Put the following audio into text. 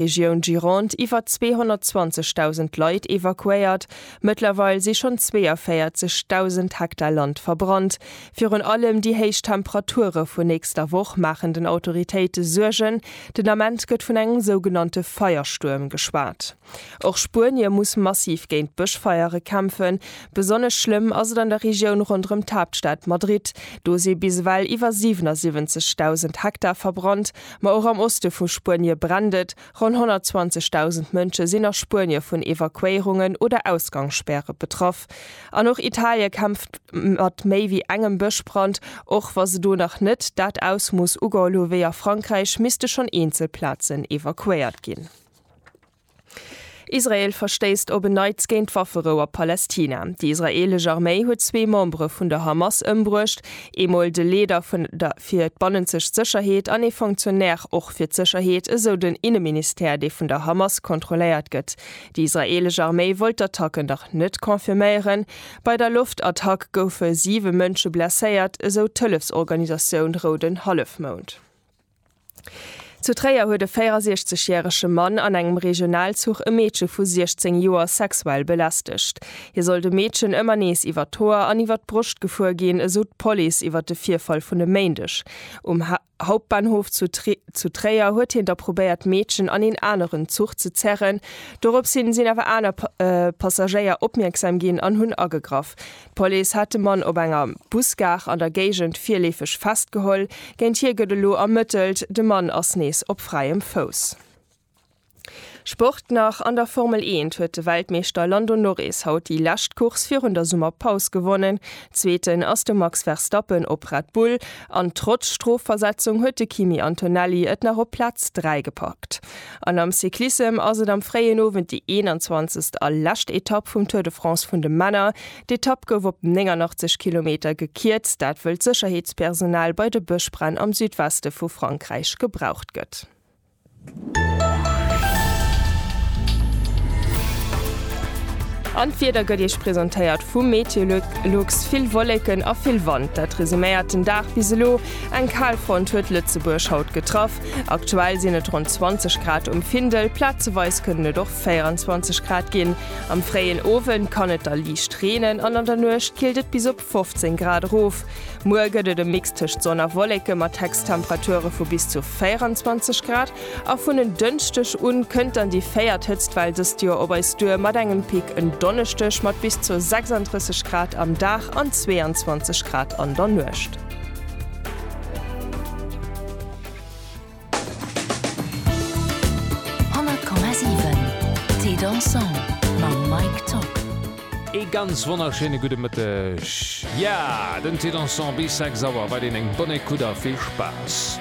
Regioun Gironde iwwer 220.000 Leit evakuéiert. Mëttlerweil si schonn 42.000 Hektar Land verbrannt. Virun allem déi héich Temperature vun nächster Woch maachen den Autoritéite Suergen. Den Ament gëtt vun engem sougenannte Feierstuerm geschwat. Och Spuenie muss massiv géint Bëschfeiere kämpfen. Besonnesch schlëmm ass et an der Regioun ronderëm d'Haaptstad Madrid. Do si bis ewell iwwer 77.000 Hektar verbrannt. Ma och am Oste vu Spuenie brennt et. Ronn 120.000 Mënsche sinn a Spuenie vun Evakuéierungen oder Ausgangsspäre betraff. An och Italie kämpft mat méi wéi engem Bëschbrand, och wa se do nach net dat Ausmooss ugeholl hu wéi a Frankräich, misste schonn eenzel Plazen evakuéiert ginn. Israel verstéisst op en Neits géint d'Wafferou a Palästina. Déi israeelesch Arméi huet zwee Membere vun der Hamas ëmbruecht, eemol de Leeder vun der fir d'bannenzegt Sécherheet an ee Fonctionnaire och fir d'Sécherheet, esou den Inneministère, dee vun der Hamas kontrolléiert gëtt. Déi israeelesch Arméi wollt d'Attacken nach net confirméieren. Bei der Loftattack goufe siwe Mënsche blesséiert, esou d'Hëllefsorganisatioun Rouden Hallefmound. Zu Tréier huet e 64 järege Mann an engem Regionalzuch e Meedche vu 16 Joer sexuell belästegt. Hie soll dem Meedchen ëmmer nees iwwer d'Hoer an iwwer d'Broscht gefuer ginn, esou d'Police iwwer de Virfall vun e Méindeg. Um Hauptbahnhof zu Tréier huet hien da probéiert d'Meedchen an een aneren Zuch ze zerren. Dorops hin sinn awer aner Passagéier opmierksam ginn an hunn agegraff. D'Police hat de Mann op enger Busgare an der Géigend virleefeg festgeholl. Géint hie gëtt elo ermëttelt. De Mann ass nees op fräiem Fouss. Sport nach An der Formel eent huet de Weltmeeschter Lando Norris haut déi lescht Course virun der Summerpaus gewonnen. Zweeten ass de Max Verstappen op Red Bull an trotz Strofversetzung huet de Kimi Antonelli et nach op Plaz 3 gepackt. An am Cyclissem ass et am fréien Owend déi 21. a lescht Etapp vum Tour de France vun de Männer. D'Etapp gouf op 89 Kilometer gekierzt, dat wëll d'Sécherheetspersonal bei de Bëschbränn am Südweste vu Frankräich gebraucht gëtt. An d'Wieder gëtt Iech presentéiert vum Meteolux. Vill Wolleken a vill Wand, dat resuméiert den Dag bis elo. Eng Kalfront huet Lëtzebuerg haut getraff. Aktuell sinn et ronn 20 Grad um Findel, plazeweis kënnen et och 24 Grad ginn. Am fréien Owend kann et da liicht reenen an an der Nuecht killt et bis op 15 Grad erof. Muer gëtt et e Mix tëscht Sonn a Wolleke mat Hechsttemperature vu bis zu 24 Grad a vun en Dënschdeg u kënnt dann déi véiert Hëtztwell dëst Joer op eis duer mat engem Pic en Donneschdeg mat bis zu 36 Grad am Dag an 22 Grad an der Nuecht. Ee ganz wonnerschéine gudde Mëtteg. Jo, den Té Dansant bis 6 Auer, wat een eng bonne Écoute a vill Spaass!